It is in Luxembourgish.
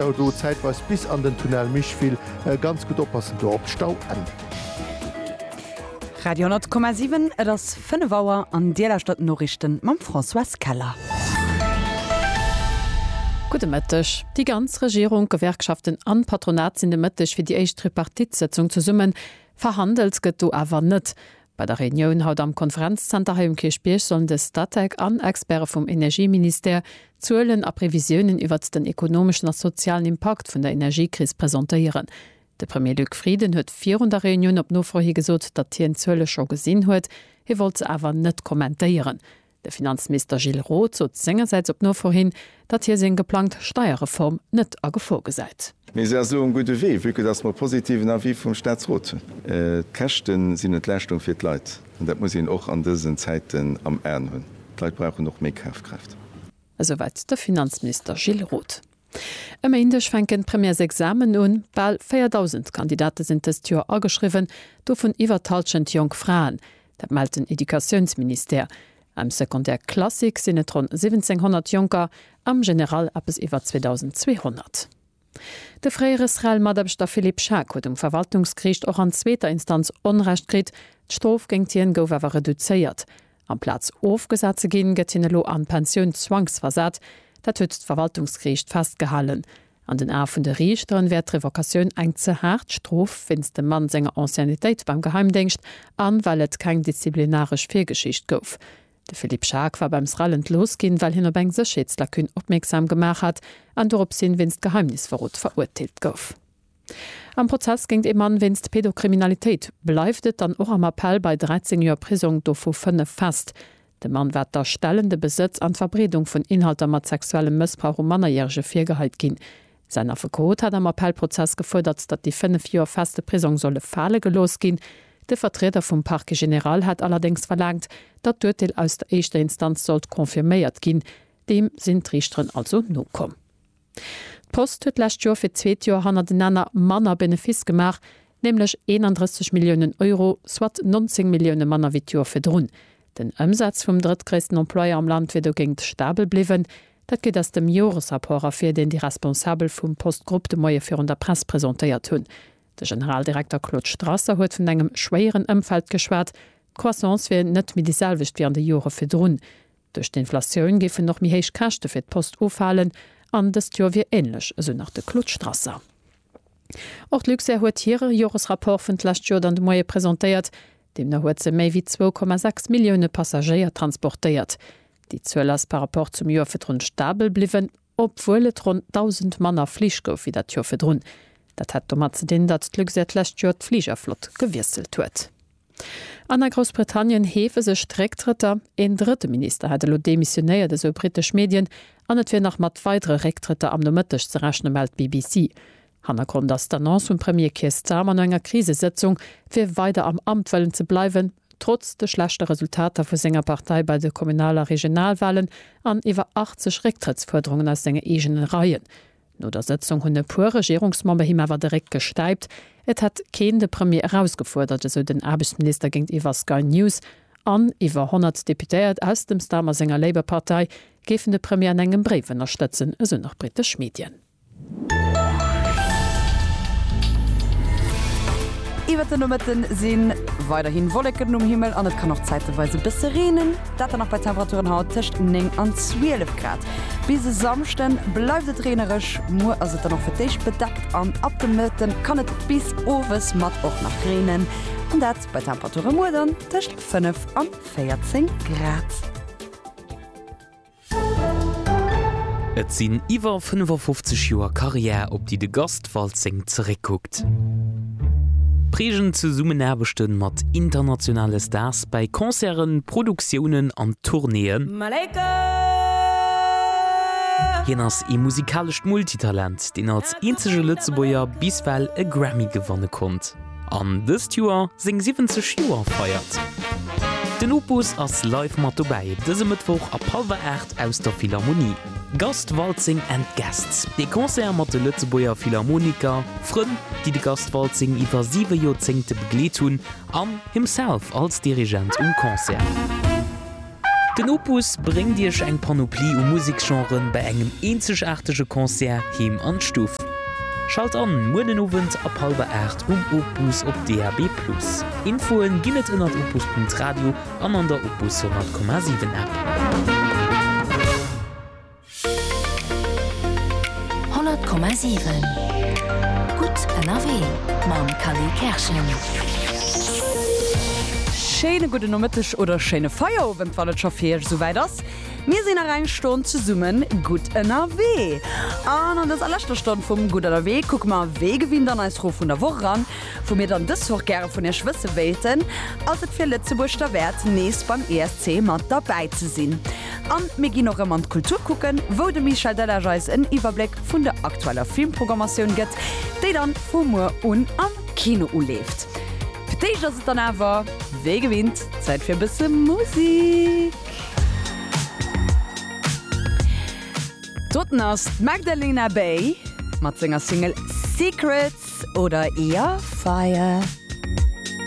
Stau do, zäitweis bis an den Tunnel Micheville, ganz gutt oppassen do op d'Stauenn. Radio 10,7 Et ass 5 Auer an Dir lauschtert d'Noriichten mam Françoise Keller. Gudde Mëtteg. Déi ganz Regierung, d'Gewerkschaften an d'Patronat sinn de Mëtteg fir déi éischt Tripartite-Sëtzung zesummen. Verhandelt gëtt do awer net. Bei der Reunioun haut am Konferenzzenter hei um Kierchbierg sollen de Statec an Experte vum Energieministère Zuelen a Previsiounen iwwert den ekonomeschen a sozialen Impakt vun der Energiekris presentéieren. De Premier Luc Frieden huet virun der Reunioun op Nofro hi gesot, datt hien d'Zuele scho gesinn huet, hie wollt se awer net kommentéieren. De Finanzminister Gilles Roth sot sengersäits op Nofor hin, datt hie seng geplangt Steierreform net a Gefor gesäit. Mee se ass elo um gudde Wee, vue que datt mer e positiven Avis vum Staatsrot hunn. D'Käschte sinn Entlaaschtung fir d'Leit, an dat muss een och an dësen Zäiten am Aen hunn. D'Leit brauchen och méi Kafkraaft. Esouwäit de Finanzminister Gilles Roth. E Méindeg fänken d'Premièresexamen un. Bal 4.000 Kandidate sinn dëst Joer ageschriwwen, dovun iwwer d'Hallschent jonk Fraen. Dat mellt den Educatiounsministère. Am Secondaire classique sinn et ronn 1.700 Jonker, am General eppes iwwer 2.200. De fréiere SREL-Mataarbechter Philippe Schaack huet um Verwaltungsgeriicht och an zweeter Instanz Onrecht kritt. D'Strof géingt hien gouf awer reduzéiert. Amplaz ofgesat ze ginn, gëtt hien elo an d'Pensioun zwangsversat. Dat huet d'Verwaltungsgeriicht festgehalen. An den Ae vun de Riichteren wär d'Revocatioun eng ze haart Strof wéinst dem Mann senger Anciennetéit beim Geheimdéngscht an well et keng disziplinaresch Virgeschicht gouf. De Philippe Schaack war beim SREL entlooss ginn, well hien op eng Sécherheetslacune opmierksam gemaach hat an doropshin wéinst Geheimnisverrot verurteelt gouf. Am Prozess géint ee Mann wéinst Pedokriminalitéit bleift et dann och am Appell bei 13 Joer Prisong, dovu 5 fest. Dem Mann war d'Erstellen, de Besëtz an d'Verbreedung vun Inhalter mat sexuellem Mëssbrauch u Mannerjärege virgeheit ginn. Säin Affekot hat am Appellprozess gefuerdert, datt déi 5 Joer feste Prisong solle fale gelooss ginn. De Vertrieder vum Parquet général hat allerdéngs verlaangt, datt d'Urteel aus der éischter Instanz sollt confirméiert ginn. Deem sinn d'Riichteren also nokomm. D'Post huet d'lescht Joer fir d'zweet Joer hannertenanner manner Benefiss gemaach, nämlech 31 Milliounen Euro, soit 19 Millioune manner wéi d'Joer virdrun. Den Ëmsaz vum drëttgréissten Employeur am Land wier dogéint stabel bliwwen. Dat geet aus dem Joresrapport ervir, deen déi Responsabel vum Post-Grupp de Moie virun der Press presentéiert hunn. De Generaldirekter Claude Strasser huet vun engem schwéieren Ëmfeld geschwat. D'Croissance wier net méi déi selwecht wéi an de Jore virdrun. Duerch d'Inflatioun géifen och méi héich Käschte fir d'Post ufalen an dëst Joer wier änlech, esou nach de Claude Strasser. Och d'Luxair huet hire Joresrapport vun d'lescht Joer dann de Moie presentéiert. Deemno huet se méi wéi zwou Komma sechs Millioune Passagéier transportéiert. Déi Zuel ass par Rapport zum Joer virdrun stabel bliwwen. obwuel et ronn 1.000 manner Flich gouf wéi dat Joer virdrun. Dat hätt domat ze dinn, datt d'Luxair d'lescht Joer d'Fligerflott gewiesselt huet. An a Groussbritannien heefe sech d'Récktrëtter. Een drëtte Minister hätt elo demissionéiert, esou britesch Medien, an et wier nach mat weidere Récktrëtter am Nomëtteg ze rechne mellt d'BBC. Hannergrond ass d'Annonce vum Premier Keir Starmer no enger Krisesëtzung, fir weider am Amt wëllen ze bleiwen, trotz de schlechte Resultater vu senger Partei bei de Kommunal a Regionalwalen an iwwer 80 Récktrëttsfuerderungen aus senge eegene Reien. No der Sëtzung hunn e puer Regierungsmember him awer de Réck gestäipt. Et hätt keen de Premier erausgefuerdert, esou den Aarbechtsminister géintiwwer Sky News. An iwwer 100 Deputéiert aus dem Starmer senger Labour-Partei géifen de Premier an engem Bréif ënnerstëtzen, esou nach britesch Medien. Iwwert de Nomëtte si weiderhi Wolleken um Himmel an et kann och zäiteweis e bësse reenen, dat dann nach bei Temperaturen haut tëscht 9 an 12 Grad. Bis e Samschde bleift et reenereg, muer ass et dann och fir d'éischt bedeckt an ab de Mëtte kann et bis owes mat och nach reenen, an dat bei Temperature muer dann tëscht 5 an 14 Grad. Et sinn iwwer 55 Joer Karriär, op déi de Gast Waltzing zeréckkuckt. Prägend Zesummenaarbechte mat internationale Stars bei Concerten, Produktiounen an Tournéeën. Hien ass ee musikalescht Multitalent, deen als eenzege Lëtzebuerger bis well e Grammy gewanne konnt. An dëst Joer seng 70 Joer feiert. Den Opus ass live mat dobäi dëse Mëttwoch ab hallwer 8 aus der Philharmonie. Gast Waltzing and Guests, ee Concert mat de Lëtzebuerger Philharmoniker, Frënn, déi de Gast Waltzing iwwer siwe Joerzéngte begleet hunn, an himself als Dirigent um Concert. Den Opus bréngt Iech eng Panoplie u Museksgenren bei engem eenzegaartege Concert heem an d'Stuff. Schalt an muer den Owend ab hallwer 8 um Opus op DAB+. Infoen ginn et ënnert opus.radio an an der Opus 100,7 App. 100,7 Gutt ënnerwee mam Khalil Kerschen. Schéine gudden Nomëtteg oder schéine Feierowend, wann et scho fir Iech esouwäit ass. Mir sinn nach eng Stonn zesumme gutt ënnerwee. An an dëser leschter Stonn vum Gutt ënnerwee kucke mer wéi gewinnt an eis Fro vun der Woch eran. Wou mir dann dës Woch gäre vun Iech wësse wéilten, Ass et fir Lëtzebuerg derwäert nees beim ESC mat derbäi ze sinn? An mir ginn och rëm an d'Kultur kucken, wou de Michel Delage eis en Iwwerbléck vun der aktueller Filmpprogrammatioun gëtt, déi dann vu muer un am Kino uleeft. Fir d'éischt ass et dann awer, wéi gewinnt, Zäit fir e bësse Musik. Doten ass d'Magdalena Bay mat senger Single Secrets oder Your Fire.